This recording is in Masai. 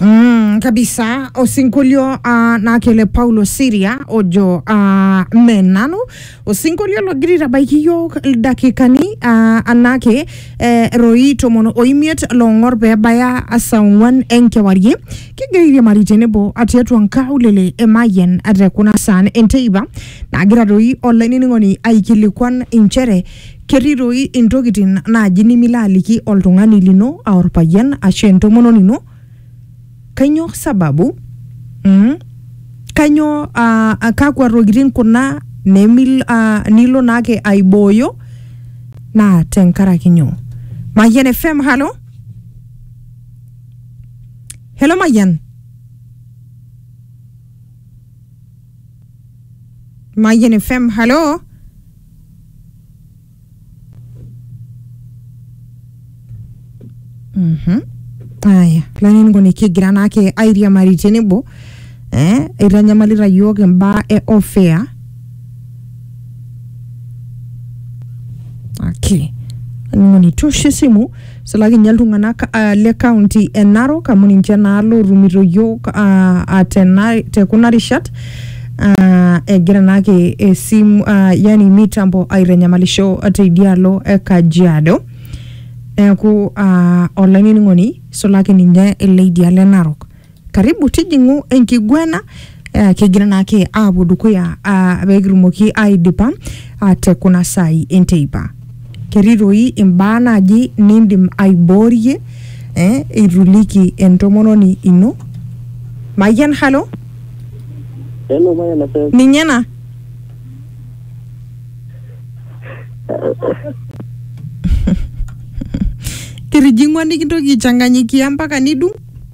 Mm, kabisa osinkolio uh, naa kele paulo siria ojo uh, me nanu osinkolio logira aitabaiki iyiook ildakikani uh, anake eh, roi tomon oimiet loong'or peebaya saa ong'uan enkewarie kigira airiamari tenebo tiatua nkaulele emayian te kuna saan enteipa naagira doi olainining'oni aikilikuan inchere Ketii doi intokitin naaji nimilo aliki oltung'ani lino aa orpayian ashu entomononi ino. Kainyoo sababu? Mm? Kainyoo aa uh, kakwa tokitin kuna nemil, uh, nilo naake aibooyo naa tenkaraki nyoo? Mayian FM, halo? Hello Mayian? Mayian FM, halo? Mhm. Aya, lainingoni kigira naake airiamari tenebo eh, eitanyamalita yiok imbaa e ofea ake lainingoni tosho esimu Isulaki ninye iltung'anak ah, le kaunti e Narok amu ninche naa lootumito yiok ah, ah, tena- te kuna rishat ah, egira naake esimu ah, yani mitambo aitanyamalisho teidialo e Kajiado neeku ah, olainining'oni isulaki ninye ele idialo e Narok. karibu tijing'u enkiguana eh, kigira naake aapuo dukuya ah, pekitumoki aidipa ah, te kuna saai enteipa ketii toi imbaa naaji nindim aiboorie eh, ituliki entomononi ino mayian halo Hello, my NSF. ninye ena kitijing'ua nikintoki aichanganyikia mpaka nidung